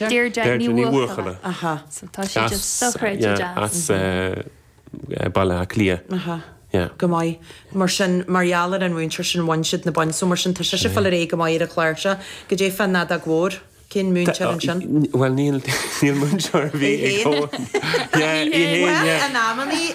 Deirdre Ní Bhuachalla. As Baile Átha Cliath. Go maith. Mar sin, mar gheall ar an mhúinteoir sin, bhain siad na boinn, so mar sin tá sise ag fáil léi go maith ar an gclár seo. Cad é fán fheadóg Mhór. Cén múinteoir ansin? Bhuel, níl múinteoir ar bith ag. Í fhéin. Í fhéin, yeah. In amannaí.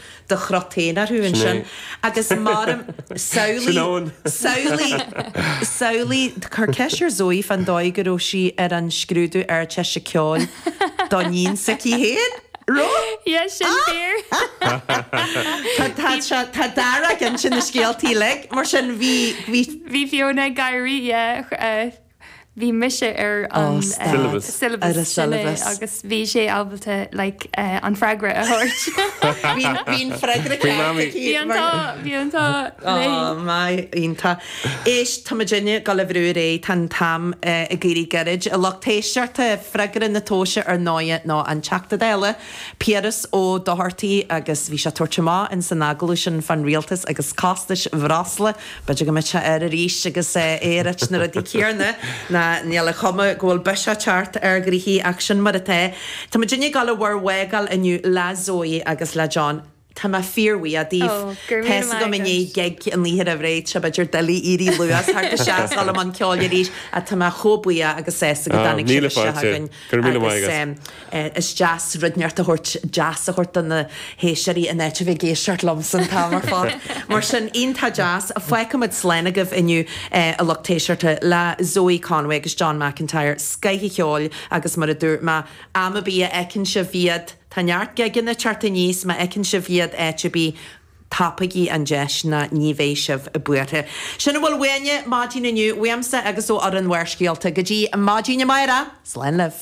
do chruthú ann Sin é. ansin agus mairim, Sin samhlaigh, ann. samhlaigh, samhlaigh, cuir ceist ar Zoe fán dóigh go raibh sí ar an scrúdú Ardteiste Ceoil don níon s'aici féin? Raibh? Yeah, sin fíor. Tá, tá, tá, tá Dara ag insint na scéalta uilig, mar sin bhí, bhí. Bhí Fiona ag éirí, yeah. bhí mise ar an syllabus sin agus bhí sé ábalta like an freagra a thabhairt. Bhí an freagra ceart aici. Bhí an t-ádh, bhí an t-ádh léi. Ó my, iontach. Éist, tá muid uilig ag dul a bheith réidh, tá an t-am ag éirí gairid. A lucht éisteachta, freagra na tomhaise ar ndóigh ná an Teachta Dála, Piaras Ó Dochartaigh agus bhí sé ag tabhairt amach in san agallamh sin fán rialtas agus costais bhreosla, B'fhéidir go mbeidh sé air arís agus é ag ráit na rudaí céanna, ná níl a chuma go bhfuil biseach ag teacht ar ghnoithí ach sin mar atá. Tá muid ag gabháil bhur bhfágáil inniu le Zoe agus le John. Tá mé fíorbhuíoch daoibh. Tá fhios agam i ndiaidh gig an oíche roimh ré, tá sé b'fhéidir doiligh éirí luath, tá sibh ag dul i mbun ceoil arís, ach tá mé chomh buíoch agus sásta go dtáinig sibh isteach chugainn. Go raibh míle maith agat. eh is deas rud inteacht a thabhairt deas a thabhairt do na héisteoirí in áit a bheith ag éisteacht liomsa an t-am ar fad. Mar sin iontach deas, fágfaimid slán agaibh inniu eh a lucht éisteachta le Zoe Conway agus John McIntyre, scoth an cheoil agus mar a dúirt mé, am ar bith a fheiceann sibh iad, tá neart gigeanna ag teacht aníos, má fheiceann sibh iad áit ar bith, tapaígí an deis ná ní bheidh sibh buartha. Sin a bhfuil uainne maidin inniu, uaimse agus ó fhoireann Bharrscéalta. Go dtí maidin amáireach, slán libh.